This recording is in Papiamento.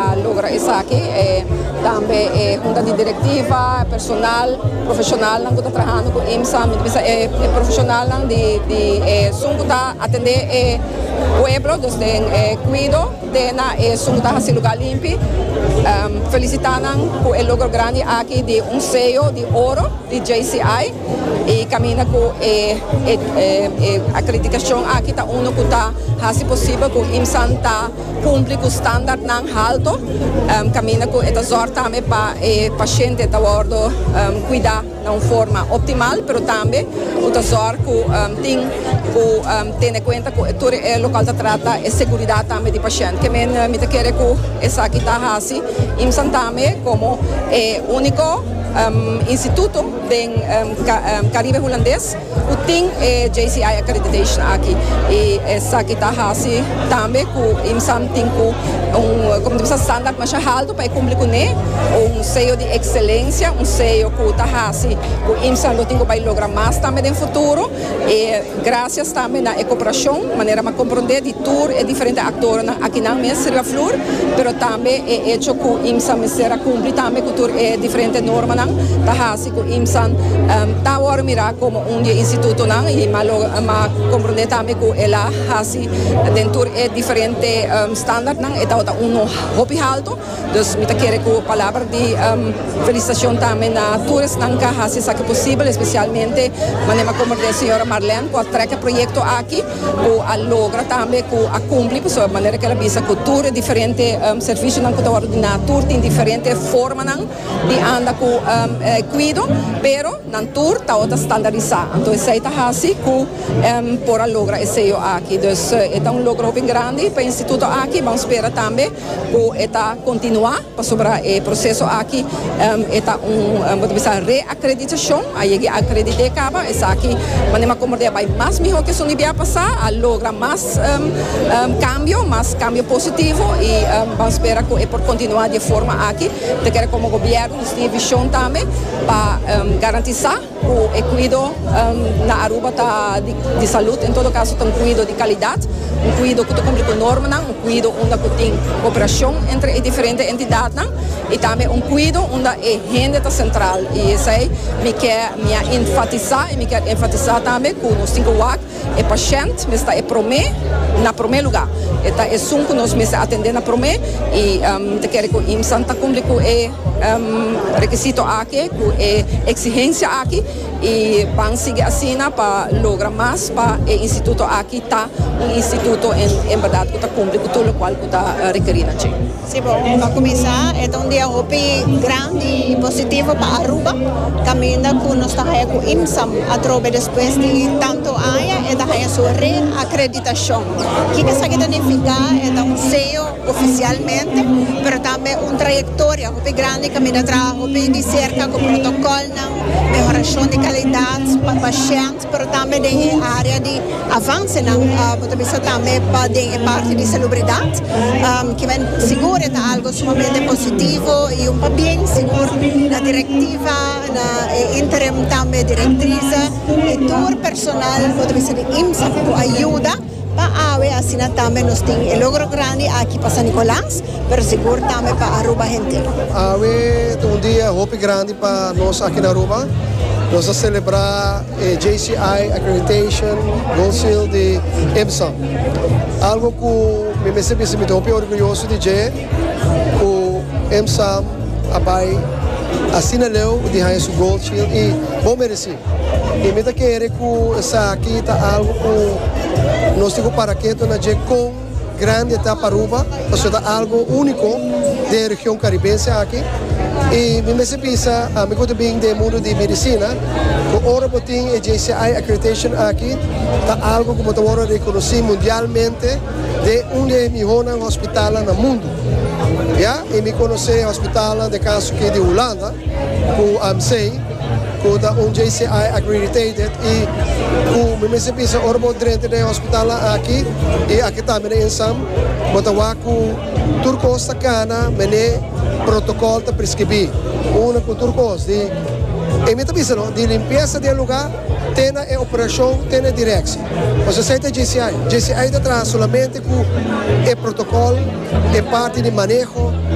a logra esaki e tambe e hunta di direktiva, e personal, profeshonalnan ku ta trahando ku IMSA, mi ta bisa e profeshonalnan di di esun ku ta atendé e pueblo dus den e kuido te na esun ku ta hasi lugá limpi felisitá nan ku e logro grandi aki di un seyo di oro di JCI i kaminda ku e e akreditashon aki ta unu ku ta hasi posibel ku IMSAn ta Cumpli cu standardnan halto, caminda cu e ta zorg tambe pa e paciente ta wordo cuida na un forma optimal, pero tambe cu ta zorg cu tin cu tene cuenta cu tur e local ta trata e seguridad tambe di paciente. Ke men mi ta kere cu esaki ta haci IMSAN tambe como e unico instituto den Caribe Hulandes. Cu tin e JCI accreditation aki y esaki ta haci tambe cu IMSAM tin cu un, como dice, standard masha halto pa e cumpli cu ne, un sello di excelencia, un sello cu ta haci cu IMSAM lo tin cu bay logra mas tambe den futuro y gracias tambe na e cooperacion, manera m'a comprende, di tur e diferente actorenan akinan mes riba flur, pero tambe e hecho cu IMSAM mester a cumpli tambe cu tur e diferente normanan ta haci. ku IMSAN ta awor mirá komo un di e institutonan i m'a lo m'a komprondé tambe ku el a hasi den tur e diferente standartnan e tabata uno hopi haltu dus mi ta kere ku palabra di felisitashon tambe na tur esnan ku a hasi esaki posibel espesialmente manera m'a komprondé señora Marlène ku a trèk e proyekto aki ku a logra tambe ku a kumpli pasobra manera ku el a bisa ku tur e diferente servisionan ku ta wordu diná tur tin diferente formanan. di anda ku kuido, pero nan tur tabata ta standarisá. Anto esei ta hasi ku por a logra e seyo aki. Dus e ta un logro hopi grandi pa e instituto aki. Ban spera tambe ku e ta kontinuá pasobra e proseso aki e ta un bo ta bisa reakreditashon. A yega i akredit'é kaba. Esaki manera komo tabata bai mas mihó ku esun di bia pasá. A logra mas kambio, mas kambio positivo i ban spera ku e por kontinuá di e forma aki. Ta kere komo gobièrnu nos tin e vishon tambe pa garantisá ku e kuido na Aruba ta di salut, en todo kaso ta un kuido di kalidat, un kuido ku ta kumpli ku normanan, un kuido unda ku tin koperashon entre e diferente entidatnan i tambe un kuido unda e hende ta sentral. I esei mi ke mi a enfatisá i mi ke enfatisá tambe ku nos tin ke wak E pashènt mes ta e promé, na promé lugá. E ta esun ku nos mester atendé na promé i mi ta kere ku IMSAN ta kumpli ku e rekisito aki, ku e eksihensia aki i ban sigui asina pa logra mas pa e instituto aki ta un instituto en bèrdat ku ta kumpli ku tur lokual ku ta rekerí na dje. Pa cuminsa e ta un dia hopi grandi y positivo pa Aruba caminda cu nos ta haya cu IMSAM atrobe despues di tanto aña e ta haya su reacreditacion. Kiko esaki ta nifica? E ta un sello oficialmente pero tambe un trayectoria hopi grandi caminda traha hopi di cerca cu protocolnan, mehoracion di calidad pa pashent. Pero tambe den e area di avansenan bo ta bisa tambe pa den e parti di salubridat kimen sigur e ta algo sumamente positivo y un pabien sigur na directiva na e interim tambe directrice y tur personal bo ta bisa di IMSA ku ayuda. Pa awe asina tambe nos tin e logro grandi aki pa San Nicolas, pero sigur tambe pa Aruba henter. Awe ta un dia hopi grandi pa nos aki na Aruba. Nos ta celebra e JCI Accreditation Gold Seal di IMSA. Algo cu mi mester bisa mi ta hopi orguyoso di dje cu IMSA a bay asina leu di haña su Gold Seal y bon mereci. I mi ta kere ku esaki ta algu ku nos tin ku para ketu na dje kon grandi e ta pa Aruba, pasobra ta algu úniko den e region karibense aki. I mi mester bisa ami ku ta bin den e mundu di medisina ku ora bo tin e JCI accreditation aki ta algu ku bo ta wòrdu rekonosí mundialmente den un di e mihónan hospitalnan na mundu. Ya, i mi konosé hospitalnan den kaso aki di Hulanda ku AMC. Cu ta un JCI accreditated y cu mi mester bisa ora bo drenta den e hospitalnan aki y aki tambe na Insam bo ta wak cu tur cos ta cana mene protocol ta prescribi. Una cu tur cos di e mi ta bisa no di limpieza di e lugar te na e operacion te na e direcci. Pues esey ta JCI. JCI ta traha solamente cu e protocol, e parti di maneho.